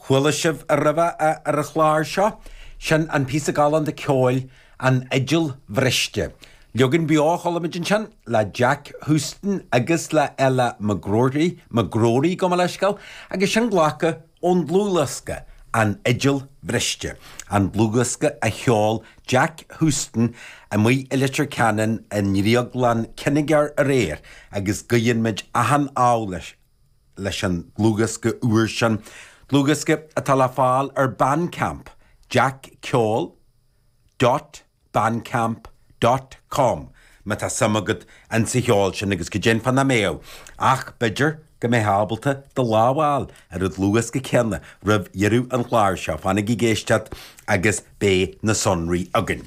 Chuala sibh roimhe é ar an chlár seo, sin an píosa galánta ceoil 'An Fhidil Bhriste'. Leagan beo a chuala muid ansin, le Jack Houston agus le Ella McGrory, McGrory, gabh mo leithscéal, agus sin glactha ón dlúthdhiosca, An Fhidil Bhriste, an dlúthdhiosca a sheol Jack Houston amuigh i Leitir Ceanainn i nDrioglann Kinnegar aréir agus guíonn muid achan ádh leis. leis an dlúthdhiosca úr sin, dlúthdhiosca atá le fáil ar Bandcamp, jackceol dot bandcamp dot com, má tá suim agat insa cheol sin, agus go deimhin nach mbeadh, ach b'fhéidir go mbeifeá ábalta do lámh a fháil ar an dlúthdhiosca céanna roimh dheireadh an chláir seo, fanaigí ag éisteacht agus beidh na sonraí againn.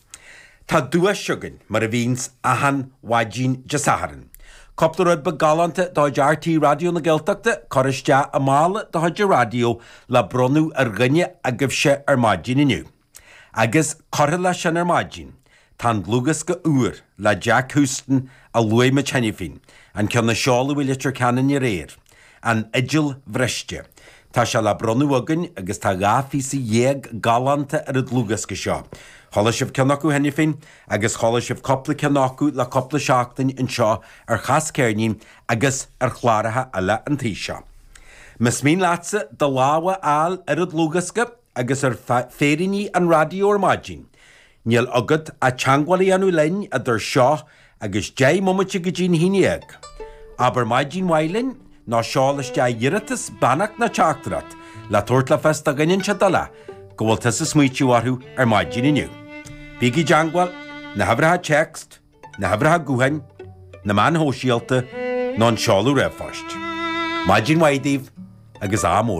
Tá duais againn, mar a bhíonns achan mhaidin Dé Sathairn. Cúpla rud beag galánta de chuid RTÉ Raidió na Gaeltachta curtha isteach i mála de chuid an raidió le bronnadh ar dhuine agaibhse ar maidin inniu. Agus, curtha leis sin ar maidin, tá an dlúthdhiosca úr le Jack Houston a luaigh muid cheana féin, an ceann a seoladh i Leitir Ceanainn aréir. An Fhidil Bhriste. Tá sé le bronnadh againn agus tá dhá phíosa dhéag galánta ar an dlúthdhiosca seo. Chuala sibh ceann acu cheana féin agus chuala sibh cúpla ceann acu le cúpla seachtain anseo ar Chas Ceirnín agus ar chláracha eile an taobh seo. Más mian leatsa do lámh a fháil ar an dlúthdhiosca, agus ar féiríní an raidió ar maidin. Níl agat ach teagmháil a dhéanamh linn idir seo agus deich mbomaite go dtí'n haon dhéag. Abair Maidin mhaith linn, nó seol isteach iarratas, beannacht nó teachtaireacht le tabhairt le fios do dhuine inteacht eile go bhfuil tusa ag smaoitiú orthu ar maidin inniu. Bígí i dteagmháil, na huimhreacha téacs, na huimhreacha gutháin, na meáin shóisialta nó an seoladh ríomhphoist. Maidin mhaith daoibh agus ádh mór.